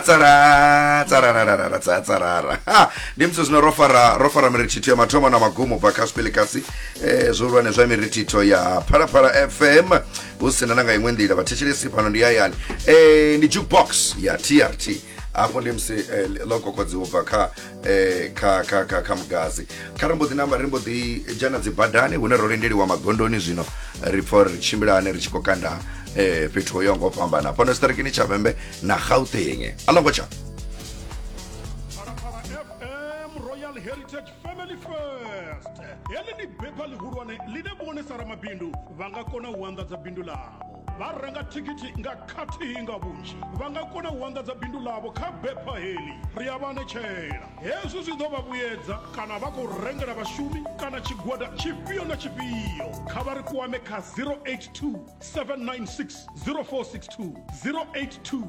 tsarara tsarararara tsa tsarara ha ndi musi zwino ro fara ro fara mirithitho ya mathomo na magumo bva kha sipelekasi eh, zwihulwane zwa mirithitho ya phalaphala fm hu sina na nga iṅwe nḓila vhathetshelesi fhano ndi hayani eh, ndi jukebox ya trt afho ndi musi eh, ḽo kokodziwa bva kha eh, kha kha kha kha mugazi kha ri mbo ḓi namba ri mbo ḓi dzhena dzi badani hune ro lindeliwa magondoni zwino ri pfa uri ri tshimbilane ri tshi khou kanda eh, fhethu ho yaho ngo fhambana fhano tshiṱirikini tsha vhembe na gauteng a longo tsha heḽi ndi bepha ḽihulwane ḽine vhone sa ramabindu vha nga kona u anḓadza bindu ḽavho Vha renga thikhithi nga khathihi nga vhunzhi vha nga kona u anḓadza bindu ḽavho kha bepha heḽi. Ri a vha anetshela. Hezwi zwi ḓo vha vhuyedza kana vha khou rengela vhashumi kana tshigwada tshifhio na tshifhio. Kha vha ri kwame kha 082 796 0462, 082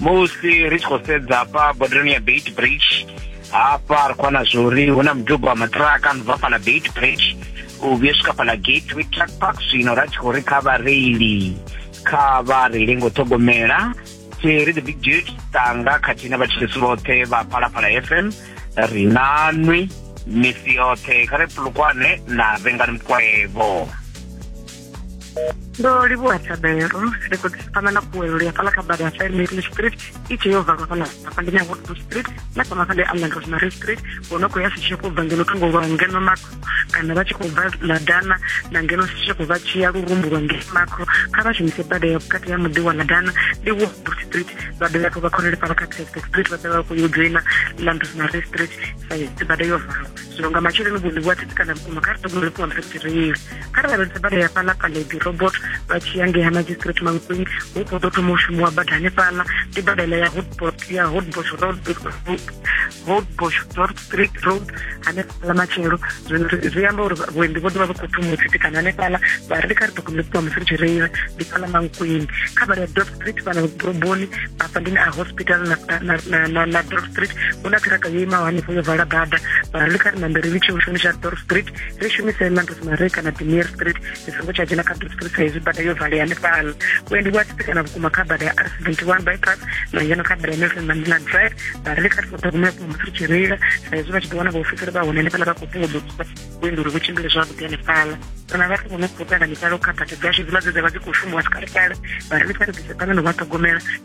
musi ri tshi khou sedza hafha bodereni ya beit bridge hafha ri khou wana zwori hu na muduba wa maṱiraka no bva fhala beit bridge u vhuya swika fhala gateway truck park zwino ra tshi khou ri kha vhareili kha vha reile ngo ṱhogomela tseri the big dude tanga khathihi na vhatshilisi vhoṱhe vha phalaphala fm ri nanwi misi yoṱhe kha ri pulukwane na vhengani mukwevho ndo livhuwa thabelo ri khou ḓisipana na kuwelo ya fhala kha bada ya fairmary street i tshee yo valwa fhala hafha ndi nyawood street na kha mafha ndi allan rosemary street wo no khou ya sitshia khou bva ngeno thungo lwa ngeno makro kana vha tshi khou bva ladana na ngeno sitshia khou vha tshiya lurumbu lwa ngeno makro kha vha shumise bada ya vhukati ya muḓi wa ladana ndi woodbrook street vha dovha khou vha khonele fhala kha texas street vha dovha khou yo joina land rosemary street sa bada yo valwa zwino nga matsheloni vhuḽiwa thitsi kana vhukuma kha ri ṱogomelefua mphephireili kha ri lavhelese bada ya fhaḽa paledi robot vha tshi ya ngei ha magistrate mankweng hu khou ḓo thoma u shumiwa bada hanefhaḽa ndi bada iḽa ya hotbot ya hotbosh road hotbosh dort street road hanefhaḽa matshelo zwino zwi amba uri vhuendi vho ḓovha vha khou thoma u tsitikana hanefhaḽa vha ri ndi kha ri ḓo kumela ṱuwa musi ri tshi reila ndi fhaḽa mankweng kha bada ya dort street fhana ḓoroboni afha ndi a hospital na dort street hu na ṱhiraka yo imaho hanefho yo vala bada vha ri ndi kha ri nambe ri litshe u shumisa dort street ri shumise ḽa rosemary kana demir street ndi songo tsha dzhena kha dot street sa izwi bada yo valea hanefhala vhuendi vhu a tsitsekana vhukuma kha bada ya r seventy one bypass na ngeno kha bada ya nelson mandela drive vhareili kha ri songo ṱhogomela vhukuma musi ri tshi reila sa izwi vha tshi ḓo wana vhaofisiri vha hone hanefhala vha khou fhungudzo vhuendi uri vhu tshimbile zwavhuḓi hanefhala kana vhathu vho no khou ṱanganyisala u kha bada dzashu dziḽa dze dza vha dzi khou shumiwa sikalekale vhareili kha ri ḓise ṱangana u vha ṱhogomela